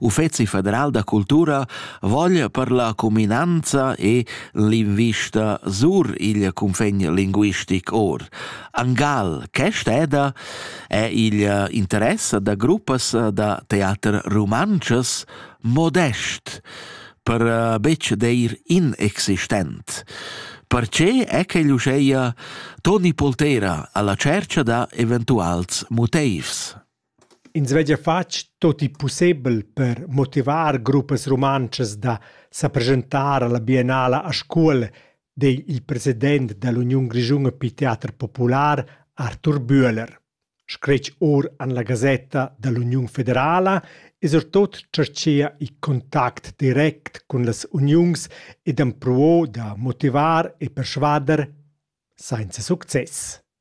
Uffeci federal da cultura voglia per la cuminanza e l'invista sur il cunfegn linguistic or. Angal, che steda, è il interesse da gruppas da teater romances modest per eh, betg dir inexistent. Perché è che l'uscheia Toni Poltera alla cerca da eventuals motivs? Ins veglia fatg tut il pussebel per motivar gruppas rumantschas da sa preschentar alla biennala a Scuol, di il president dall'Uniun grischuna per teater popular Arthur Bühler. Scretg or han la gasetta dall'Uniun federala e surtot tscherchia il contact direct cun las uniuns ed empruo da motivar e persvader senza success.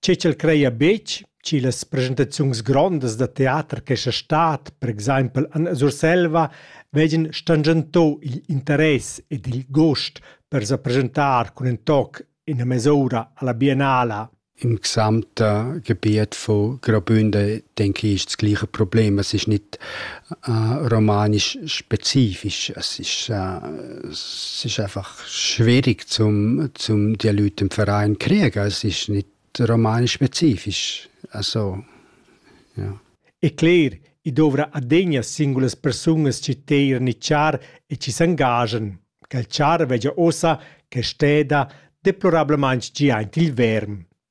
Tgei ch'el creia buc, schi las presentaziuns grondas da teater che sa stat, per exempel en Surselva, vegien stangentau igl interess ed il gust per sa presentar cun in toc ina mes'ura alla biennala. Im gesamten Gebiet von Graubünden denke ich, das gleiche Problem. Es ist nicht äh, romanisch spezifisch, es ist, äh, es ist einfach schwierig zum, zum die Leute im Verein kriegen. Es ist nicht romanspezifisch. Also, ja. E cler, i dovra adegna singulas persunas ci teir ni char e ci s'engagen, che il char vegia ossa che steda deplorablement gi aint il verm.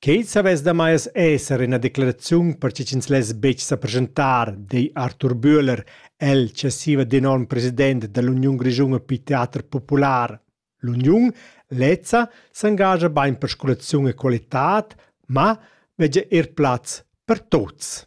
Quei savess da mai esser ina declaraziun per che ch'ins less betg sa presentar, di Arthur Bühler, el successiva d'enorm president dall'Uniun grischuna per teater popular. L'uniun lezza s'engascha bein per scolaziun e qualitad, ma vegia er plaz per tuts.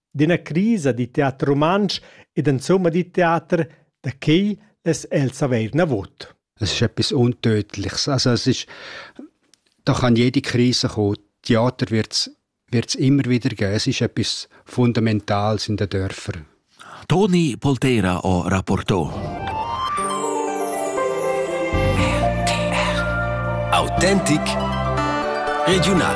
d'üna crisa da teater rumantsch ed insomma da teater, da quai less el savair navot. Es ist etwas Untötliches. Also es ist, da kann jede Krise kommen. Theater wird es immer wieder geben. Es ist etwas Fundamentales in den Dörfern. Toni Poltera o Rapporto. Autentik regional.